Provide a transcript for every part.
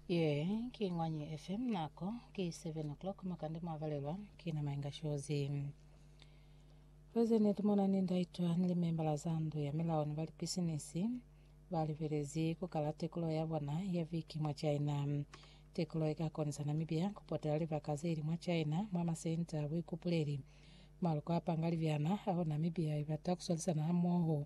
Ye ki Ñwanyi FM, nako ki 7 o'clock makande mwavalelwa ki na Mainga Shozi. President Monani Ndaitwa ni limembala za ndu ya milao ni balipisinisi balibelezi kukala tekulo ya bona ya viki mwa China. Tekulo ika konisa Namibia kupotela libaka zeili mwa China mwa masenta a buikupuleli, maluko a panga libyana ao Namibia ibata kuswalisana hamoho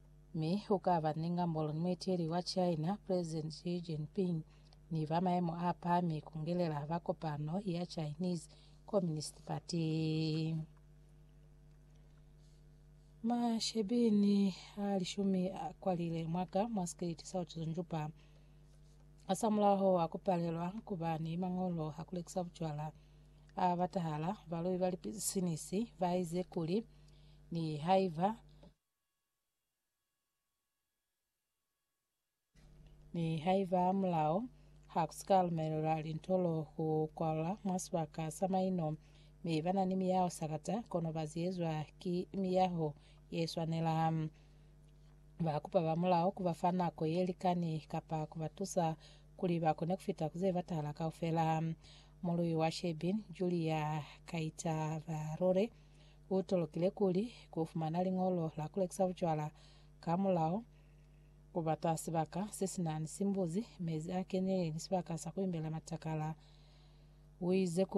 mi u ka ba ni ngambolo ni mueteli wa China, President Xi Jinping, ni ba maemo a pahami ku ngelela ba kopano ya Chinese Communist Party. Mashebini a lishumi a kwalile mwaka mwa sikiliti sa ucuzunjupa asamulaho wa kupalelwa kuba ni mangolo a kulekisa bucwala a batahala baloi ba lipisinisi baize kuli ni haiba Mi haiba mulao ha ku si ka lumelelwa lintolo ku kwalwa mwa sibaka sa maino, mi ba na ni miyaho sakata, kono ba ziyezwa ki miyaho ye swanela. Ba kupa ba mulao ku ba fa nako ye likani kapa ku ba tusa kuli ba kone ku fita ku ze batahala kaufela. Mului wa Shebeen, Julia Kaitabarore, U tolokile kuli ku fumana liñolo la ku lekisa bucwala ka mulao, ku bata sibaka se si na ni simbuzi, mezi a kenile ni sibaka sa ku imbela matakala. U ize kuli.